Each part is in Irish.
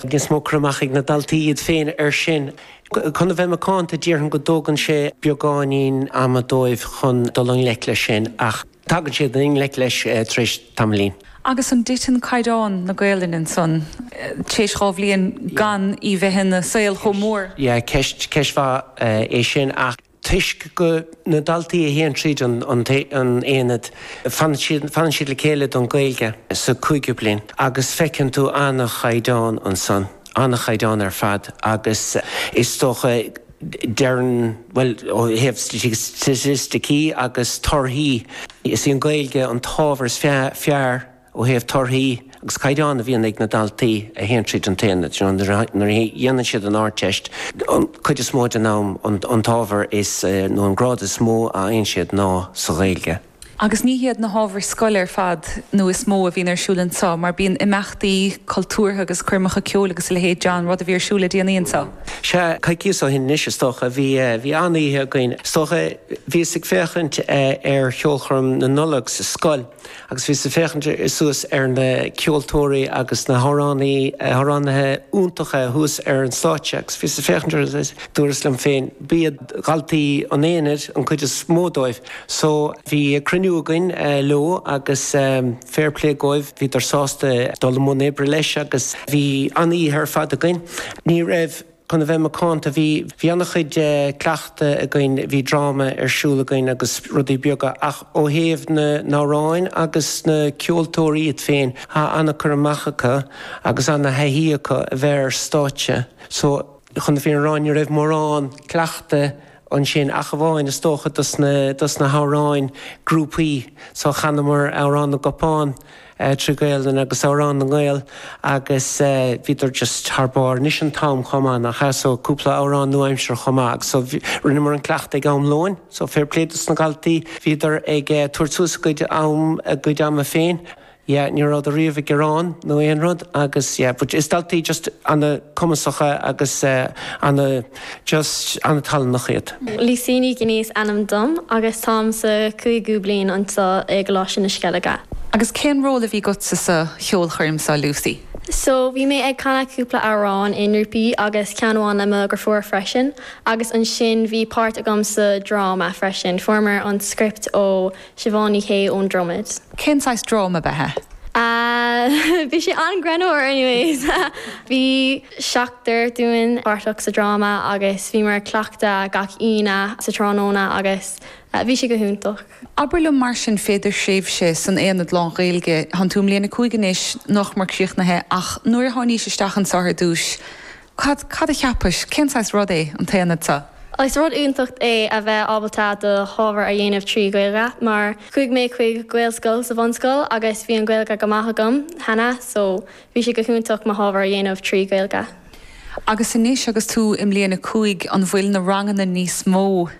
Níos mó cur amach ag na daltaí iad féin air sin. Chun a bheith macánta, déarfainn go dtógann sé beagáinín ama dóibh chun dul i ngleic leis sin ach tagann siad i ngleic leis tar éis tamaillín. Agus an dtiteann caighdeán na Gaelainne ansan tar éis dhá bhliain gan í bheith ina saol chomh mór? Yeah, ceist, ceist mhaith é sin ach. Toisc go na daltaí a théann tríd an aonad, fanann siad le chéile don Gaeilge sa cúigiú bliain agus feiceann tú an-chaighdeán ansan, an-chaighdeán ar fad agus is dócha deireann, bhuel ó thaobh staitisticí agus torthaí, is í an Gaeilge an t-ábhar is fearr. Ó thaobh torthaí agus caighdeán a bhíonn ag na daltaí a théann tríd an t-aonad, nuair a dhéanann siad an Ardteist, an cuid is mó den am an t-ábhar nó an grád is mó a fhaigheann siad ná sa Ghaeilge. Agus ní hiad na hábhair scoile ar fad nó is mó a bhíonn ar siúl anseo mar bíonn imeachtaí cultúrtha agus coirmeacha ceoil agus a leithéidí, an rud a bhí ar siúl le déanaí anseo. Sea, coicíos ó shin anois is dócha, bhí, bhí an-oíche againn. Is dócha, bhíos ag féachaint ar cheolchoirm na Nollag sa scoil. Agus bhíos ag féachaint suas ar na ceoltóirí agus na hamhránaí, amhránaithe iontacha thuas ar an stáitse agus bhíos ag féachaint orthu agus dúras liom féin, ba iad daltaí an aonaid an cuid is mó dóibh. So bhí cruinniú againn leo agus fair play dhóibh, bhíodar sásta dul i mbun oibre leis agus bhí an-oíche ar fad againn. Ní raibh. Chun a bheith macánta, bhí, bhí an-chuid cleachtadh againn, bhí dráma ar siúl againn agus rudaí beaga ach ó thaobh na n-amhráin agus na ceoltóirí iad féin, tá an-cur amach acu agus an-thaithí acu a bheith ar stáitse. So, chun na fírinne a rá, ní raibh mórán cleachtaidh ansin ach amháin, is dócha, dos na, dos na hamhráin grúpaí. So, chanamar Amhrán na gCupán. eh, trí Ghaelainn agus Amhrán na nGael agus eh, bhíodar just thar barr anois an t-am chomh maith nach ea so cúpla amhrán nua-aimseartha chomh maith agus so bhí, rinneamar an cleachtadh ag am lóin so fair play dos na daltaí bhíodar ag eh, tabhairt suas a gcuid am, a gcuid ama féin yeah ní rabhadar riamh ag gearán nó aon rud agus yeah but is daltaí just ana cumasacha agus eh, ana. Just an-tallannach iad. Lucy Ní Ghiní is ainm dom agus táim sa cúigiú bliain anseo i gColáiste na Sceilge. Agus cén ról a bhí agatsa sa cheolchoirm seo Lucy? So bhí mé ag canadh cúpla amhrán i ngrúpaí agus ceann amháin le mo dheirfiúr freisin agus ansin bhí páirt agam sa dráma freisin. Fuaireamar an script ó Siobhán Ní Shé ón Dromaid. Cén saghas dráma a bhí agat? Ahh bhí sé an-greannmhar anyways bhí seachtar dúinn páirteach sa dráma agus bhíomar ag cleachtadh gach Aoine sa tráthnóna agus bhí sé go hiontach. Abair liom mar sin féidir thréimhse san Aonad Lán-Ghaeilge, thánn tú i mbliain a 5 anois, nach mór críochnaithe ach nuair a tháinís isteach anso ar dtúis, Cad, cad a cheapais, cén saghas rud é an t-aonad seo? Is rud iontach é a bheith ábalta do hábhar a dhéanamh trí Ghaeilge mar chuaigh mé chuig Gaelscoil sa bhunscoil agus bhí an Ghaeilge go maith agam cheana so bhí sé go hiontach mo hábhar a dhéanamh trí Ghaeilge. Agus anois agus tú i mbliain a cúig an bhfuil na ranganna níos mó?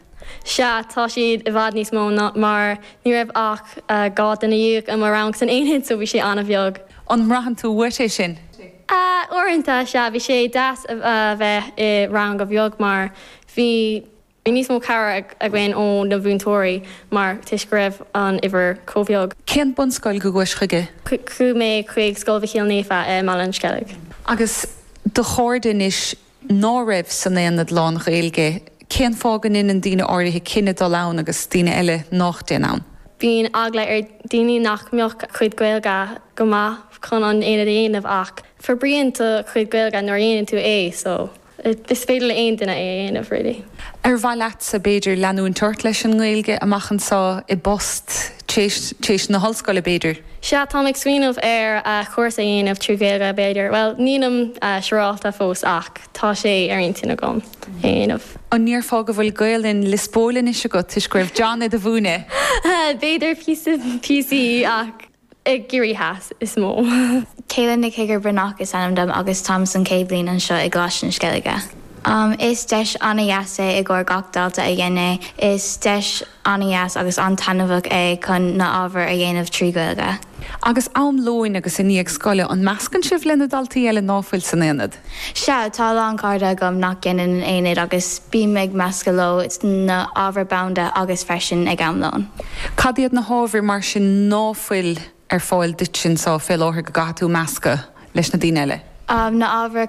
Sea, tá siad i bhfad níos mó ná mar ní raibh ach dhá duine déag i mo rang san aonad so bhí sé an-bheag. An mbraitheann tú uait é sin? A, Uaireanta, sea, bhí sé deas a bheith i rang beag mar bhí níos mó cabhair againn ó na mhúinteoirí mar toisc go raibh an uimhir chomh beag. Cén bunscoil go gcuais chuige? Chuaigh mé chuig Scoil Mhichíl Naofa i mBaile an Sceilg. Agus do chairde anois, ná raibh san aonad lán-Ghaeilge, cén fáth go ndeineann daoine áirithe cinneadh dul ann agus daoine eile nách dtéann ann? Bíonn eagla ar daoine nach mbeadh a cuid Gaeilge go maith chun an aonad a dhéanamh ach forbraíonn do chuid Gaeilge nuair a dhéanann tú é so is féidir le aon duine é a dhéanamh really. Ar mhaith leatsa, b'fhéidir, leanúint ort leis an nGaeilge amach anseo, i bpost, tar éis na hollscoile b'fhéidir? Sea, táim ag smaoineamh ar chúrsa a dhéanamh trí Ghaeilge, b'fhéidir. Bhuel, nílim siúráilte fós ach tá sé ar intinn agam é a dhéanamh. An ndéarfá go bhfuil Gaolainn Liospóil anois agat toisc go raibh John id do mhúineadh? B'fhéidir píosa píosaí ach i gCiarraí Theas is mó. Kayla Nic Uidhir Breathnach is ainm dom agus táim san chéad bhliain anseo i gColáiste na Sceilge. Is deis an-dheas é i gcomhair gach dalta a dhein é. Is deis. an-dheas agus an-taitneamhach é chun na h-ábhair a dhéanamh trí Ghaeilge. Agus am lóin agus i ndiaidh scoile, an meascann sibh le na daltaí eile ná fuil san aonad? Sea, tá a lán cairde agam nach ndéanann an aonad agus bím ag meascadh leo sna h-ábhair bhanda agus freisin ag am lóin. Cad iad na h-ábhair mar sin ná fuil ar fáil duit anso fé láthair go gcaithfidh tú meascadh leis na daoine eile? Na h-ábhair.